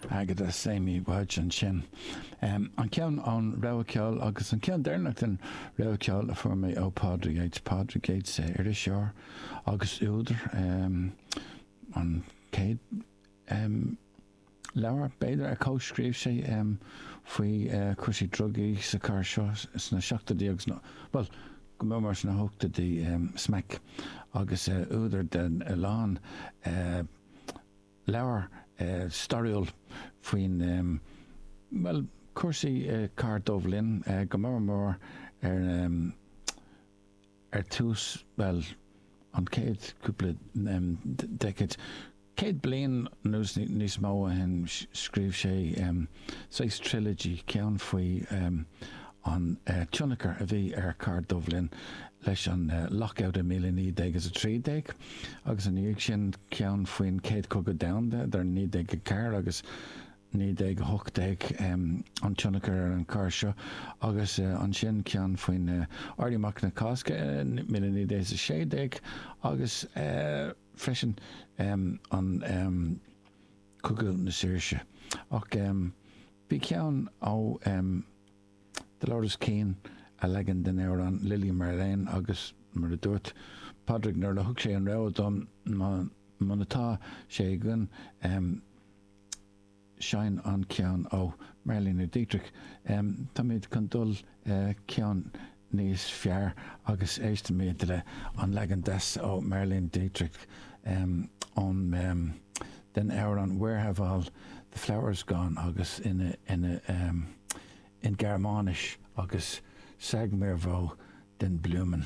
Agatha Samie Wadge ansin. An ceann ón rogha ceoil agus an ceann deireanach den rogha ceoil a fuair mé ó Pádraig Yeates. Pádraig Yeates, iriseoir agus údar. An chéad leabhar, b'fhéidir, a chomhscríobh sé faoi chúrsaí drugaí sa chathair seo sna seachtóidí agus na, bhuel, go mór mór sna hochtóidí, Smack, agus údar den a lán leabhar stairiúil faoin, bhuel, cúrsaí cathair Duibhlinn, go mór mór ar ar tús, bhuel, an chéad cúpla decade. Céad bliain nó níos mó ó shin scríobh sé saghas trilogy, ceann faoi an tionchar a bhí ar cathair Duibhlinn leis an Lockout i míle naoi déag is a trí déag, agus ina dhiaidh sin ceann faoin Chéad Chogadh Domhanda idir naoi déag a ceathair agus naoi déag a hocht déag, an tionchar ar an chathair seo, agus ansin ceann faoin Éirí Amach na Cásca i míle naoi déag is a sé déag agus. freisin an Cogadh na Saoirse. Ach bhí ceann ó Dolores Keane, a leagan den amhrán Lili Marlene, agus mar a dúirt Pádraig nuair a thug sé an rogha dom, muna tá sé againn, Seinn an ceann ó Marlene Dietrich. Táimid chun dul ceann níos fearr agus éistfimid le an leagan deas ó Marlene Dietrich ón den amhrán Where Have All The Flowers Gone agus in Gearmáinis agus Sag mir wo die Blumen.